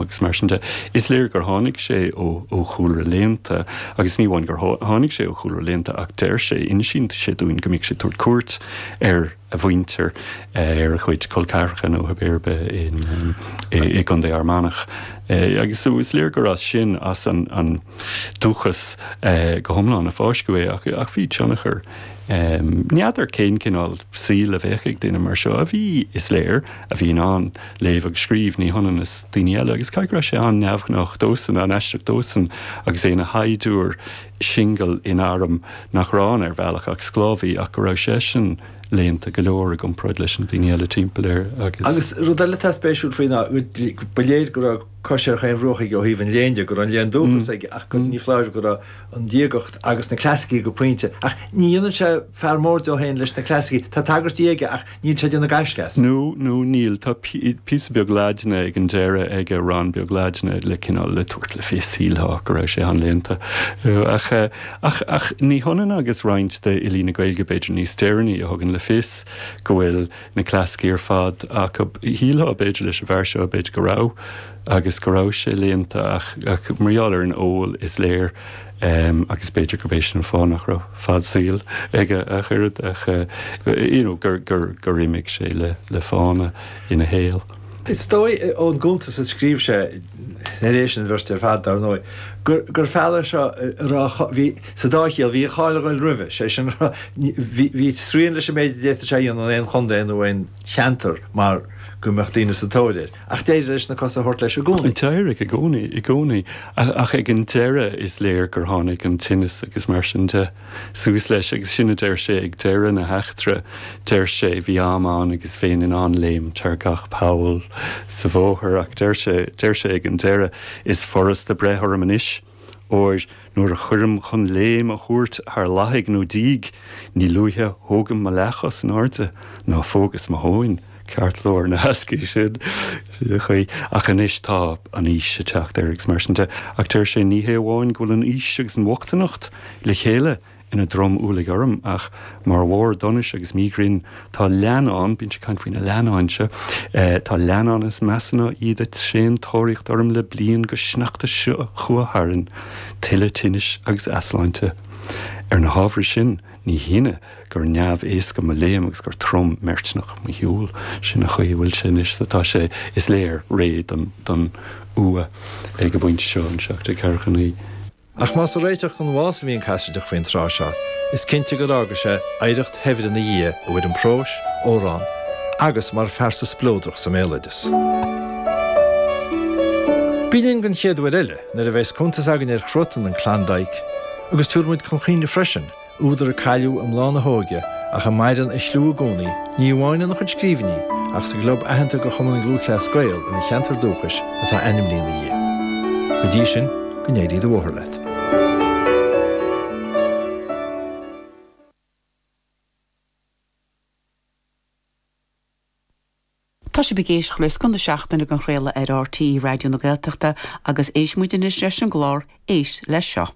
agus mar sin de. Is léir gur tháinig sé ó chúlra léannta, agus ní amháin gur tháinig sé ó chúlra léannta ach deir sé, insíonn sé dúinn, go mbíodh sé ag tabhairt cuairt ar a mhuintir, ar a chuid col ceathracha nó whatever i gContae Fhear Manach. Agus is léir gur as sin, as an dúchas go hiomlán, a fáisceadh é. Ach bhí tionchar. N'fheadar cén cineál saoil a bheadh ag duine mar seo, a bhí, is léir, a bhí in ann léamh agus scríobh, ní hionann is daoine eile, agus caithfidh go raibh sé an-neamhghnách dósan, an-aisteach dósan, agus é ina shaighdiúir singil in arm nach raibh ann, ar bhealach, ach sclábhaí, ach go raibh seisean léannta go leor i gcomparáid leis na daoine eile timpeall air agus. Agus rud eile atá spéisiúil faoi ná go, ba léir go raibh cos ar chaon bhruach aige ó thaobh an léinn de, go raibh an léann dúchas aige ach go, ní foláir, go raibh an diagacht agus na clasaicí go pointe. Ach ní dhéanann sé fear mór dó féin leis na clasaicí, tá tagairtí aige ach. Níl sé ag déanamh gaisce as. No, no, níl. Tá píosa beag Laidine ag an deireadh aige, rann beag Laidine le cineál, le tabhairt le fios, shílfeá, go raibh sé an-léannta. Ach, ach, ach ní hionann agus roinnt d'fhilí na Gaeilge, b'fhéidir, níos deireanaí, a thugann le fios go bhfuil na clasaicí ar fad acu, shílfeá, b'fhéidir, leis an bhfear seo, b'fhéidir, go raibh, agus go raibh sé léannta, ach, ach mar gheall ar an ól, is léir, em agus b'fhéidir gurb é sin an fáth nach raibh fad saoil aige ach oiread ach eh you know gur gur gur imigh sé le le fána ina shaol. Is dóigh ón gcuntas a scríobh sé tar éis an bhirt ar fad dar ndóigh gur gur fear é seo a raibh a bhí sa dá chiall bhí a cháil ag goil roimhe sé sin bhí bhí srian leis an méid a d'fhéadfadh sé a dhéanamh in aon chontae nó aon cheantar mar go mbeadh daoine sa tóir air. Ach d'éirigh leis na cosa a thabhairt leis i gcónaí. D'éirigh, i gcónaí, i gcónaí. Ach ag an deireadh is léir gur tháinig an tinneas agus mar sin de suas leis. Agus sin a deir sé ag deireadh na heachtra. Deir sé, bhí am ann agus bheinn in ann léimt thar gach poll sa bhóthar. Ach deir sé, deir sé ag an deireadh, is furasta breith orm anois. óir nuair a chuirim chun léim a thabhairt thar lathaigh nó díog ní luaithe thógaim mo leathchos in airde ná phógas mo thóin ceartlár na heascaí. Sin an chaoi. Ach anois tá an aois ag teacht air agus mar sin de. Ach deir sé, ní hé amháin go bhfuil an aois agus an bhochtaineacht le chéile, ina dtromualach orm, ach mar bharr donais agus míghrinn, tá leannán, bíonn sé ag caint faoi na leannáin seo, tá leannáin is measa ná iad ag tréan tóraíocht orm le bliain go sneachta seo chuaigh tharainn, tuilleadh tinnis agus easláinte. Ar na hábhair sin, ní hionadh gur neamh-éasca mo léim agus gur trom meirtneach mo shiúl. Sin an chaoi a bhfuil sé anois, so tá sé, is léir, réidh don uaigh ag an bpointe seo in 1749. Ach más ag réiteach don bhás a bhí an Casaideach faoin tráth seo, is cinnte gur fhága sé oidhreacht shaibhir ina dhiaidh i bhfoirm próis, amhrán agus mar phearsa spleodrach sa mbéaloideas. Bí linn don chéad uair eile nuair a bheas cuntas againn ar chruatan an Klondike agus tabharfaidh muid chun cuimhne freisin Údar a cailleadh i mbláth na hóige ach a maireann a chliú i gcónaí, ní amháin ina chuid scríbhinní, ach sa gclub aitheanta de Chumann Lúthchleas Gael ina cheantar dúchais atá ainmnithe ina dhiaidh. Go dtí sin, go n-éirí do bhóthar leat. Tá sibh ag éisteacht le scoth na seachtaine dhá chraoladh ar RTÉ Raidió na Gaeltachta agus éistfidh muid anois leis an gclár 'Éist Leis Seo'.